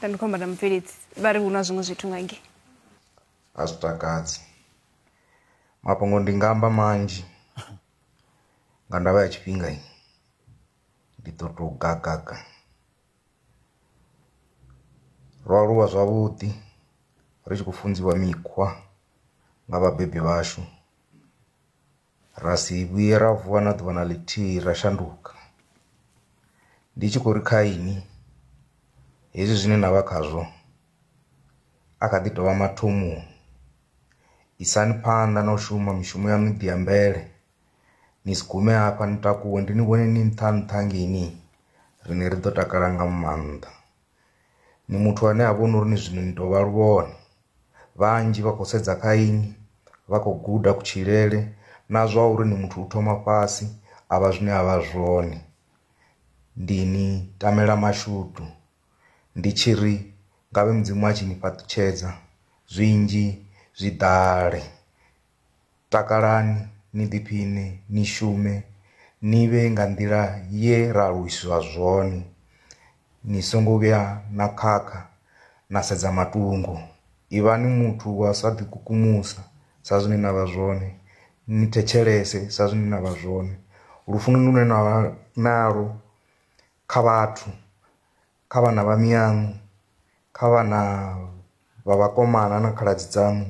ndandikhomba na mubveledzi vha ri hu na zwiṅwe zwithu nga nge a zwi takadzi mafhungo ndi nga amba manzhi nga ndavha ya tshifhinga i ndi ḓo tou gagaga ro aluwa zwavhuḓi ri tshi khou funziwa mikhwa nga vhabebi vhashu Ra si vhuye ra vuwa na ḓuvha na ḽithihi ra shanduka. Ndi tshi khou ri kha inwi, hezwi zwine na vha khazwo a kha ḓi tou vha mathomoni. Isani phanḓa na u shuma mishumo ya miḓi ya mvele, ni si gume hafha ni takuwe ndi ni vhone ni nṱha nṱha ngei, riṋe ri ḓo takala nga maanḓa. ni muthu ane a vhona uri ni zwino ni tou vha luvhone vhanzhi vha khou sedza kha inwi vha khou guda kutshilele na zwa uri ni muthu u thoma fhasi a vha zwine a vha zwone ndi ni tamela mashudu ndi tshi ri ngavhe mudzimu a tshi ni fhaṱutshedza zwinzhi zwi ḓale. Takalani, ni ḓiphiṋe, ni shume, ni vhe nga nḓila ye ra aluwiswa zwone. Ni songo vhuya na khakha na sedza matungo. Ivhani muthu wa u sa ḓikukumusa sa zwine na vha zwone, ni thetshelese sa zwine na vha zwone. Lufunoni lune na vha nalwo kha vhathu, kha vhana vha miyaṋu, kha vhana vha vhakomana na khaladzi dzaṋu,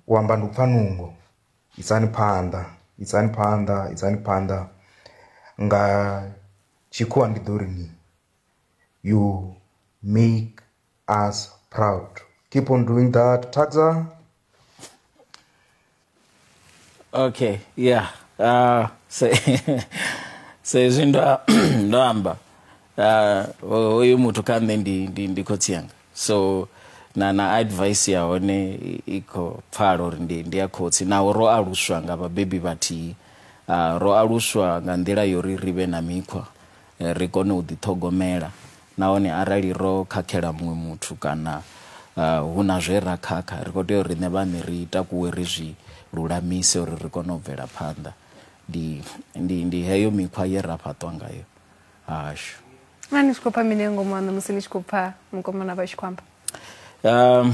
u amba ndi u pfha nungo isani phanḓa isani phanḓa isani phanḓa nga tshikhuwa ndi ḓo ri ni you make us proud keep on doing that thakzwa. okay yeah uh, se, sezwi ndo ndo amba uh, hoyu muthu kha nṋe ndi, ndi, ndi khotsi yanga so na na advice ya hone i- i khou pfala uri ndi, ndi ya khotsi naho ro aluswa nga vhabebi vhathihi uh, ro aluswa nga nḓila yori ri vhe na mikhwa ri kone u ḓiṱhogomela nahone arali ro khakhela muṅwe muthu kana hu na zwe ra khakha, ri khou tea uri riṋe vhaṋe ri takuwe ri zwi lulamise uri ri kone u bvela phanḓa. Ndi, ndi, ndi heyo mikhwa ye ra fhaṱwa ngayo hashu. Naa ni tshi khou pfa mini nga ngomu haṋu musi ni tshi khou pfa mukomana vha tshi khou amba? Um,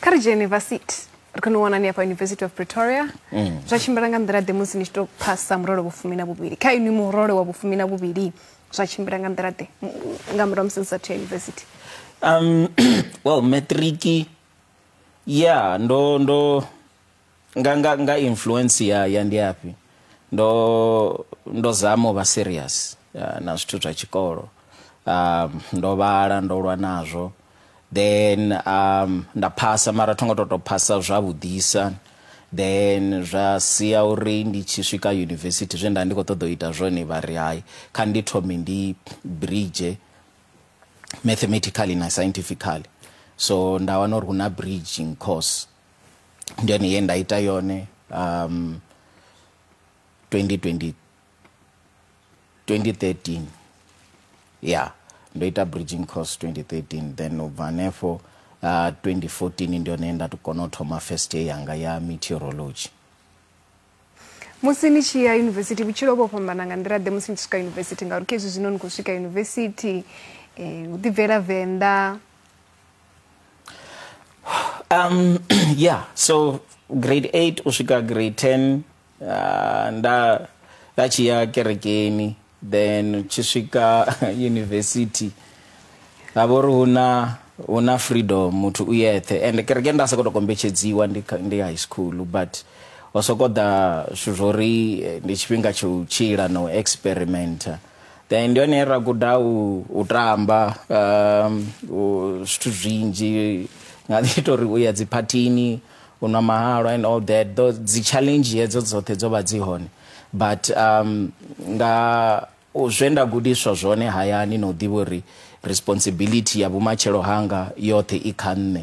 kha ri dzhie yunivasithi ri kone u wanani hafha university of pretoria mm. zwa tshimbila nga nḓila ḓe musi ni tshi tou phasa murole wa fumi na vhuvhili kha inwi murole wa vhufumi na vhuvhili zwa tshimbila nga nḓila ḓe nga murahu musi ni sathu ya university um well matriki ya ndo ndo nga nga nga influence ya ya ndi afhi ndo ndo zama u vha serious ah, na zwithu zwa tshikolo um, ndo vhala ndo lwa nazwo then um, nda phasa mara tho ngo to to phasa zwavhuḓisa then zwa sia uri ndi tshi swika university zwe nda ndi khou ṱoḓa u ita zwone vha ri hai kha ndi thome ndi bridge mathematically na scientifically so nda wana uri hu na bridging course ndi yone ye nda ita yone um 2020 2013 ya ndo ita bridging course 2013 then u bva hanefho uh, 2014 ndi yone ye nda to kona u thoma first year yanga ya meteorology musi ni tshi ya yunivesithi vhutshilo vho fhambana nga nḓila ḓe musi ni tshi swika yunivesithi ngauri khezwi zwino ni khou swika yunivesithi um u ḓibvela venḓa um yeah so grade 8 u swika grade 10 uh, nda nda tshi ya kerekeni then tshi swika university ha vha uri hu na hu na freedom muthu u yeṱhe and kereke nda sokoto kombetshedziwa ndi kha- ndi high school but ho sokou ḓa zwithu zwo ri eh, ndi tshifhinga tsha u tshila na u experimenta then ndi hone ra guda u, u tamba um, u, zwithu zwinzhi nga ḓi ita uri u ya dziphathini u nwa mahalwa and all that Tho- dzi challenge hedzo dzoṱhe dzo vha dzi hone but um, nga u- zwe nda gudiswa zwone hayani na u ḓivha uri responsibility ya vhumatshelo hanga yoṱhe i kha nṋe